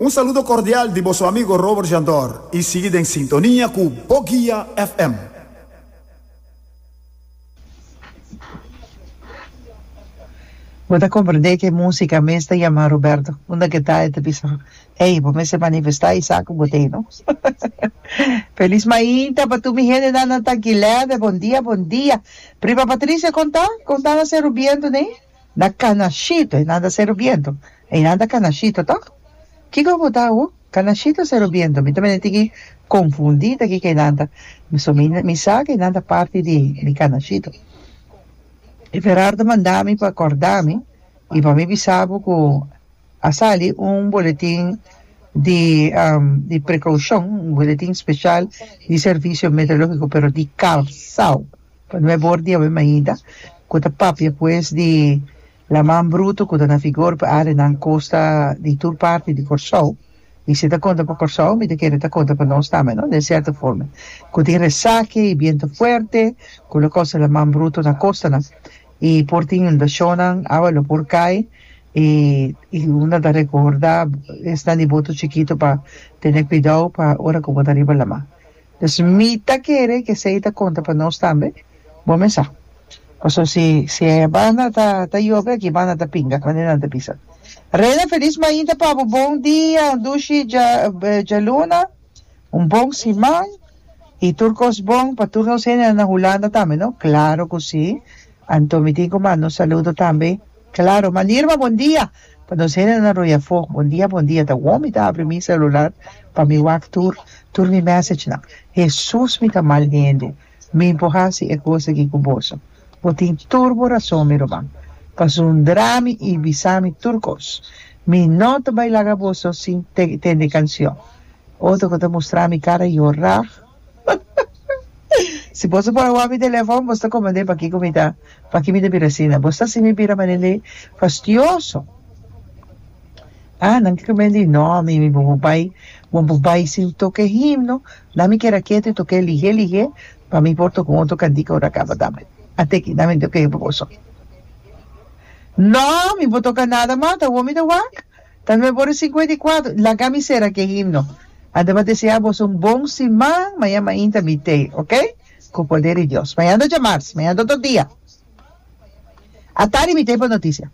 Un saludo cordial di boso amigo Robert Jandor y sigui den sintonia cu Bo Guia FM. Bo ta comprende cu e musica mes ta yama Roberto unda cu e ta e ta bisa ey bo mester manifesta y sa cu bo ta ey no. Feliz mainta pa tur mi hende nan nan ta Guileve bon dia bon dia prima Patricia con ta con ta na Cerro Viento ne. na Canashito e nan ta sero biento e nan ta Canashito toh kiko bo ta awo Canashito sero biento mi ta bini tiki confundi ta kiko e nan ta so mi mi sa ke nan ta parti di di Canashito y Ferardo manda mi pa corda mi y pa mi bisa bo cu a sali un boletin di di precaucion un boletin special di servicio meteorologico pero di Callao. Pa nuebbe or di awe mainta cu ta papia cu es di laman bruto cu ta na vigor pa arenan costa di tur parti di Corsou y si ta conta pa Corsou mi ta kere ta conta pa nos tambe no den cierto forma cu tin resaki y biento fuerte cu lo cos e laman bruto na costanan y por tin inundacionnan awa lo por cay y y una ta recorda esnan di boto chikito pa tene cuidao pa ora cu bo ta riba laman. Pues mi ta kere ke esei ta konta pa nos tambe, bo me sa. Paso si si e banda ta ta yobe aki banda ta pinga kuantu nan ta bisa. Reina felis mainta pa bo bon dia Dushi Dja Djaluna un bon siman y tur kos bon pa tur nos hende nan na Hulanda tambe no claro cu si anto mi tin cu mando un saludo tambe Claro, ma Nirma bon dia pa nos hende na Royafo, bon dia bon dia ta wou mi ta abri mi celular pa mi wak tur tur mi message nan, Hesus mi ta mal hende mi por hasi e cos aki cu boso, bo tin tur bo rason mi ruman pa sundrami y bisami tur cos, mi no ta bay laga boso sin tende cancion, otro cu ta mustrami cara yora. Si boso por a wak mi telefòn, boso ta komprendé pakiko mi ta paki mi ta bira asina. Boso ta hasi mi bira manera fastioso. Ah, nan ke kome li. Nò, ami mi por bai, bo por bai sin toke himno. Nan mi keda ketu i tok'é lihé lihé pa mi por toka un otro kantika ora a kaba tambe. Ate aki nan mi tok'é pa boso. Nò, mi por toka nada mas, ta awor mi ta wak. Tal vez bo ta cincuenta y cuatro, laga mi cera ki e himno. A ta pa desea boso un bon siman, mañan main ta mit'é, ok? Cu poder di Dios. Mañan ta djamars, mañan ta otro dia. A tardi mit'é pa noticia.